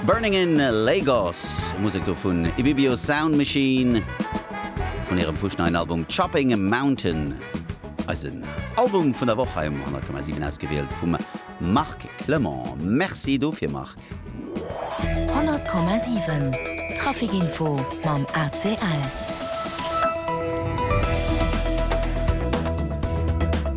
Burning in Lagos, Musek do vun Ibibio Sound Machine, vun hirem fuschneien Album Chopping a Mountain. Eisen Album vun der Woch hei um 100,7 ausgewielt vum Marc Clement. Merci dofir Marc! 100,7 Trafic Info mam ACL.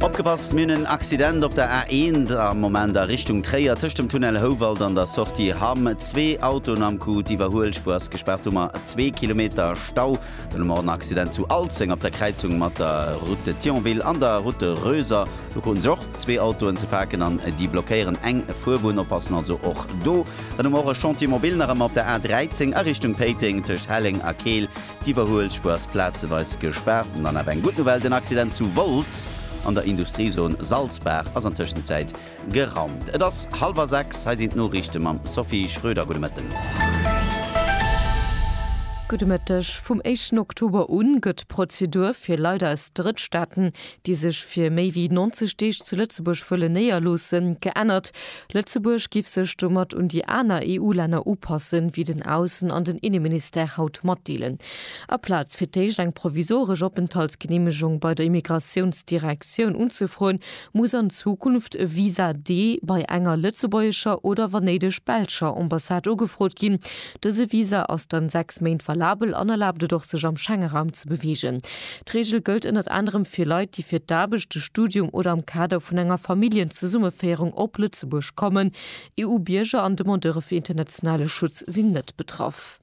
Opgepasst, mir hunn en Accident op der A1 am Moment a Richtung Tréier tëscht dem Tunnel Houwald an der Sortie Hamm. Zwee Autoen am Coup, d'Iwwerhuelspuer ass gespaart, domat zwee Kilometer Stau. Dann hu mer och en Accident zu Alzeng op der Kräizung mat der Route de Thionville an der Route de Röser. Do kruten sech och zwee Autoen ze paken an déi blockéieren eng Fuerbunn. Oppassen also och do. Dann hu mer och e Chantier mobile nach ëmmer op der A13 a Richtung Péiteng tëscht Helleng a Keel. D'Iwwerhuelspuer ass plazeweis gespaart. An dann awer eng gutt Nouvelle, den Accident zu Wolz an der Industriezone Salzbaach ass an Tëschenzäit gerannt. Et ass hallwer 6, hei sinn d'Noriichte mam Sophie Schröder. Gudde Mëtten. Gudde Mëtteg. Vum éischten Oktober u gëtt d'Prozedur fir Leit aus Drëttstaaten, déi sech fir méi wéi 90 Deeg zu Lëtzebuerg wëllen néierloossen, geännert. Lëtzebuerg giff sech domat un déi aner EU-Länner upassen, wéi den Aussen an den Inneministère haut matdeelen. Aplaz fir d'éischt eng provisoresch Openthaltsgeneemegung bei der Immigratiounsdirektioun unzefroen, muss an Zukunft e Visa D bei enger lëtzebuergescher oder wann néideg belscher Ambassade ugefrot ginn. Dëse Visa ass dann 6 Méint valabel an erlaabt et och sech am Schengeraum ze beweegen. D'Reegel gëllt ënnert anerem fir Leit, déi fir d'Aarbecht, de Studium oder am Kader vun enger Familljenzesummeféierung op Lëtzebuerg kommen. EU-Bierger an Demandeure fir internationale Schutz sinn net betraff.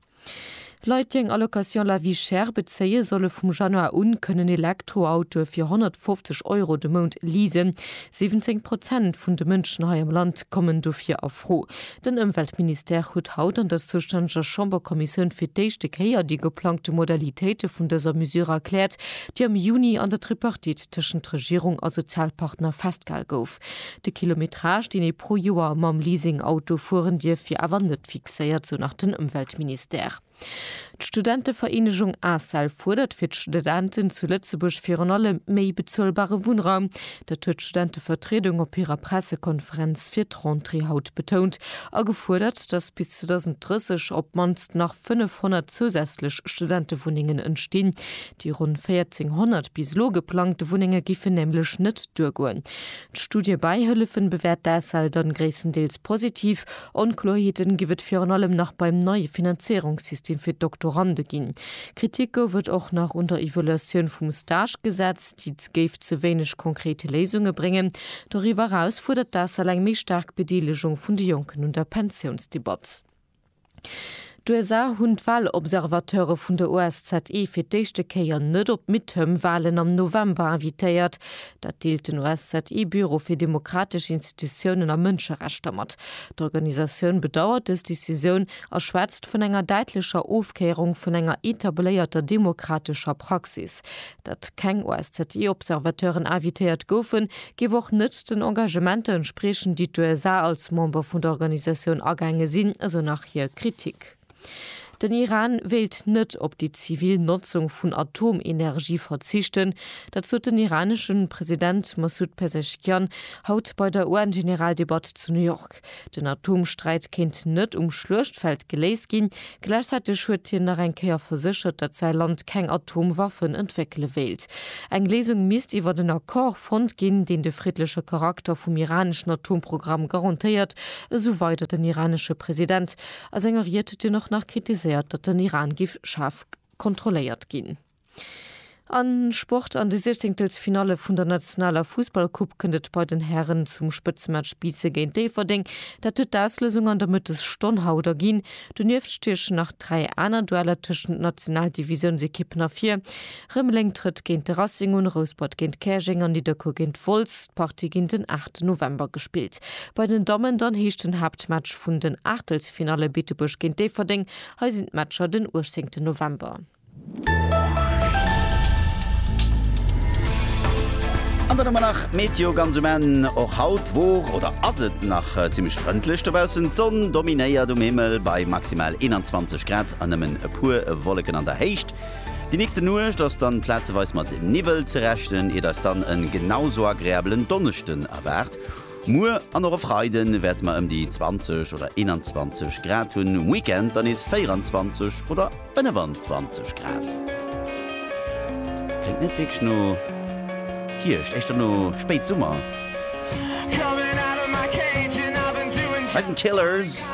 Leit, déi eng Allocation La Vie Chère bezéien, solle vum Januar un kënnen Elektroautoe fir 150 Euro de Mount leasen. 17 Prozent vun de Mënschen hei am Land kommen dofir a Fro. Den Ëmweltministère huet haut an der zoustänneger Chamberkommissioun fir d'éischte Kéier déi geplangte Modalitéite vun dëser Mesure erkläert, déi am Juni an der Tripartite tëschent Regierung a Sozialpartner festgehal gouf. De Kilometrage, deen ee pro Joer mam Leasing-Auto fueren dierf, wier awer net fixéiert, sou nach den Ëmweltministère. D'Studentevereenegung ACEL fuerdert fir d'Studenten zu Lëtzebuerg virun allem méi bezuelbare Wunnraum. Dat huet d'Studentevertriedung op hirer Pressekonferenz fir d'Rentrée haut betount a gefuerdert, datt bis 2030 op d'mannst nach 500 zousätzlech Studentewunnengen entstinn. Déi ronn 1.400 bis elo geplangte Wunnenge géifen nämlech net duergoen. D'Studiëbäihëllefen bewäert d'ACEL dann gréisstendeels positiv. Onkloerheeten giff et virun allem nach beim neie Finanzéierungssystem fir d'Doktorande ginn. Kritik gouf et och nach un der Evaluatioun vum Stagegesetz, déi géif ze wéineg konkret Léisunge bréngen. Doriwwer eraus fuerdert d'ACEL eng méi staark Bedeelegung vun de Jonken un der Pensiounsdebatt. D'USA hunn d'Walobservateure vun der OSZE fir d'éischte Kéier net op d'Midterm-Walen am November invitéiert. Dat deelt den OSZE-Büro fir demokratesch Institutiounen a Mënscherechter mat. D'Organisatioun bedauert dës Decisioun a schwätzt vun enger däitlecher Ofkéierung vun enger etabléierter demokratescher Praxis. Datt keng OSZE-Observateuren invitéiert goufen, géif och net den Engagementer entspriechen, déi d'USA als Member vun der Organisatioun agaange sinn, esou nach hir Kritik. Den Iran wéilt net op déi zivil Notzung vun Atomenergie verzichten. Dat sot den iranesche President Massoud Pezeshkian haut bei der UN-Generaldebatt zu New York. Den Atomsträit kéint net um Schluechtfeld geléist ginn. Gläichzäiteg huet hien nach eng Kéier verséchert, datt säi Land keng Atomwaffen entwéckele wéilt. Eng Léisung misst iwwer en Accord fonnt ginn, deen de friddleche Charakter vum iraneschen Atomprogramm garantéiert, esou weider den iranesche President a senger Ried, deen och nach kritiséiert, datt den Iran giff schaarf kontrolléiert ginn. Am Sport, An de Siechzehntelfinalle vun der nationaler Fussballcoupe kënnt et bei den Hären zum Spëtzematch Biissen géint Déifferdeng. Dat huet d'Auslësung an der Mëttesstonn haut erginn. Donieft stiechen nach dräi aner Dueller tëschent Nationaldivisiounsekippen ervir. Rëmeleng trëtt géint de Racing un, Rouspert géint Käerjeng an Nidderkuer géint Wolz. D'Partie ginn den 8 November gespillt. Bei den Dammen dann heescht den Haaptmatch vun den Aachtelsfinalle Beetebuerg géint Déifferdeng. Hei sinn d'Matcher den 18 November. An dann hu mer nach d'Meteo ganz um Enn. Och haut wor oder ass et nach zimmlech frëndlech dobaussen. D'Sonn dominéiert um Himmel bei maximal 21 Grad an nëmmen e puer Wolleken an der Héicht. Déi nächste Nuecht ass dann plazeweis mat Niwwel ze rechnen, iert eis dann en genau sou agreabelen Donneschden erwaart. Muer an och e Freide wäerte mer ëm déi 20 oder 21 Grad hunn, um Weekend dann nees 24 oder 25 Grad. Kléngt net wierklech no Hierscht, éischter no Spéitsummer. Bei den Killers.